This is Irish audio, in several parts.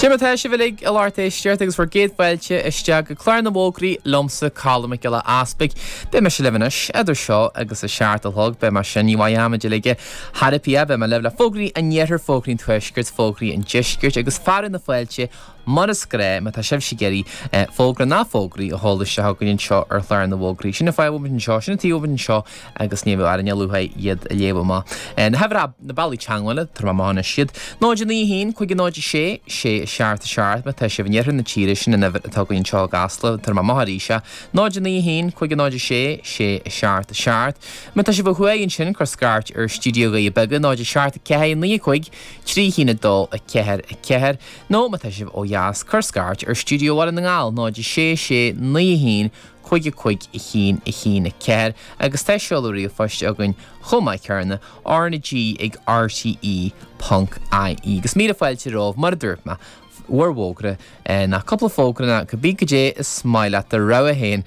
Dé mar atá sibh uilig a lucht éisteachta agus bhur gcéad fáilte isteach go Clár na bhFógraí liomsa Colm Mac Giolla Easpaig Beidh mise libh anois, idir seo agus a seacht a chlog, beidh mar sin ní bhfaighidh am a dil aige thar a pia, beidh mé libh le fógraí an iarthair, fógraí an tuaiscirt, fógraí an deiscirt agus fearadh na fáilte Mar is gnáth, má tá sibhse ag iarraidh fógra ná fógraí a chur isteach chugainn anseo ar chlár na bhfógraí, sin an fáth a bhfuilimid anseo, sin an taobh a bhfuilimid anseo agus ní bheidh orainn ach lúcháir iad a léamh amach. Na hábhair ab, na bealaí teagmhála, tabharfaidh mé amach anois iad. 0:09:01, 5:06, Sé a seacht a seacht, má tá sibh in iarthar na tíre, sin an uimhir atá againn anseo i gCasla, tabharfaidh mé amach arís é. 0:09:01, 5:06, Sé a seacht a seacht, má tá sibh ó thuaidh ansin, cuir scairt ar Studio Dhoirí Beaga, 0:07:04, 9:05, Trí a haon a dó a ceathair a ceathair, Nó má tá sibh ó dheas, cuir scairt ar Studio Bhaile na nGall, 0 6 6 9 1 5 5 1 1 4, agus tá seoladh ríomhphoist againn chomh maith céarna, R-na G ag RTÉ ponc IE. Agus míle fáilte romhaibh, mar a dúirt mé, bhur bhfógra, ná cúpla fógra ná, cibé goidé is maith leat do rogha féin,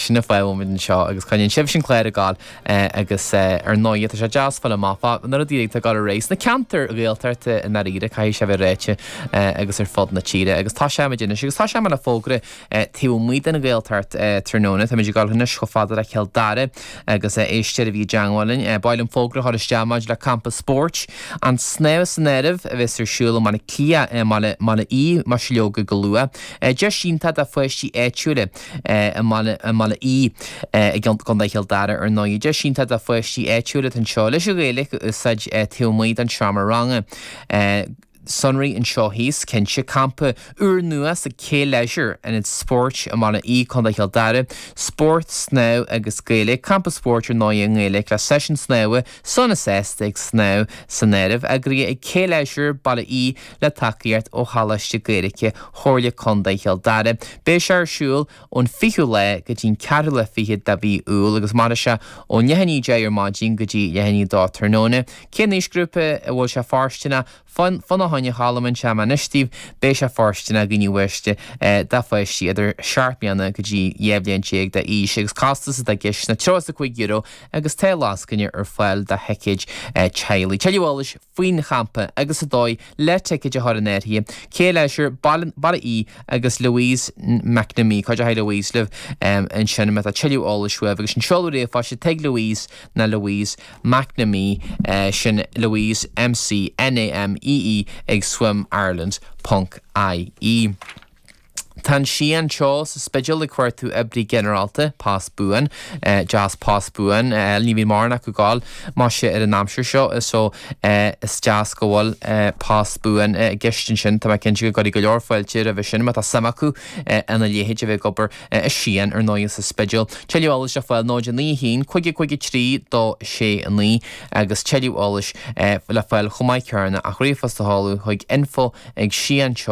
sin an fáth a bhfuil muid anseo, agus coinníonn sibhse an clár ag gabháil. Agus ar ndóighe, tá sé deas fáil amach fá na rudaí atá ag dul ar aghaidh sna ceantair Ghaeltachta i ndáiríre, caithfidh sé a bheith ráite, agus ar fud na tíre. Agus tosóimid anois, agus tosóidh mé le fógra taobh amuigh den Ghaeltacht tráthnóna. Táimid ag dul anois chomh fada le Cill Dara agus Esther a bhí i dteangmháil linn. Ba mhaith liom fógra a chur isteach maidir le campa spóirt, an snámh san áireamh, a bheas ar siúl i mBaile Átha Cliath, mBaile Átha Í Mhaiseilógaigh go luath. Deis iontach do pháistí áitiúla. i mBaile Átha Í i gContae Chill Dara ar ndóigh. Deis iontach do pháistí áitiúla atá anseo leis an Ghaeilge a úsáid taobh amuigh den seomra ranga. Sonraí anseo thíos, cinnte. Campa úr nua sa K Leisure, ionad spóirt i mBaile Átha Í, Contae Chill Dara. Spórt, snámh agus Gaeilge. Campa spóirt ar ndóigh i nGaeilge le seisiún snámha, sauna seasta ag snámh san áireamh. Eagraithe ag K Leisure, Baile Átha Í. Le tacaíocht ó Choláiste Gaeilge Chomhairle Contae Chill Dara, beidh sé ar siúl ón 20ú lá go dtí'n 24ú lá de mhí Iúil agus mairfidh sé ó leath i ndiaidh a 10 ar maidin go dtí leath i ndiaidh a 2 tráthnóna. Cén aoisghrúpa a bhfuil sé fóirsteanach? Fan, fan, a Choilm, inseoidh mé anois daoibh, beidh sé fóirsteanach do na páistí do pháistí idir seacht mbliana go dtí dhá bhliain déag d'aois agus costas atá i gceist ná €35 agus tá lascaine ar fáil do thicéid teaghlaigh. Tuilleadh eolais. faoin champa agus an dóigh le ticéad a chur in áirithe, K Leisure Baile Átha Í agus Louise McNamee. Cuideochaidh Louise libh ansin? Má tá tuilleadh eolais uaibh agus an seoladh ríomhphoist, atá ag Louise ná Louise McNamee, sin Louise MC NAMEE ag swim ireland ponc IE. Tá an Sián Teo sa Spidéal ag cuartú oibrí ginearálta, post buan, deas post buan, ní bhíonn mórán acu ag goil, muise, ar an aimsir seo so is deas go bhfuil post buan i gceist ansin, tá mé cinnte go gcuirfidh go leor fáilte roimhe sin má tá suim acu ina léithéid a bheith ag obair i Sián ar ndóigh sa Spidéal. Tuilleadh eolais le fáil 09 1 55 3269 agus tuilleadh eolais le fáil chomh maith ach ríomhphost a sheoladh chuig info ag sianteo.ie.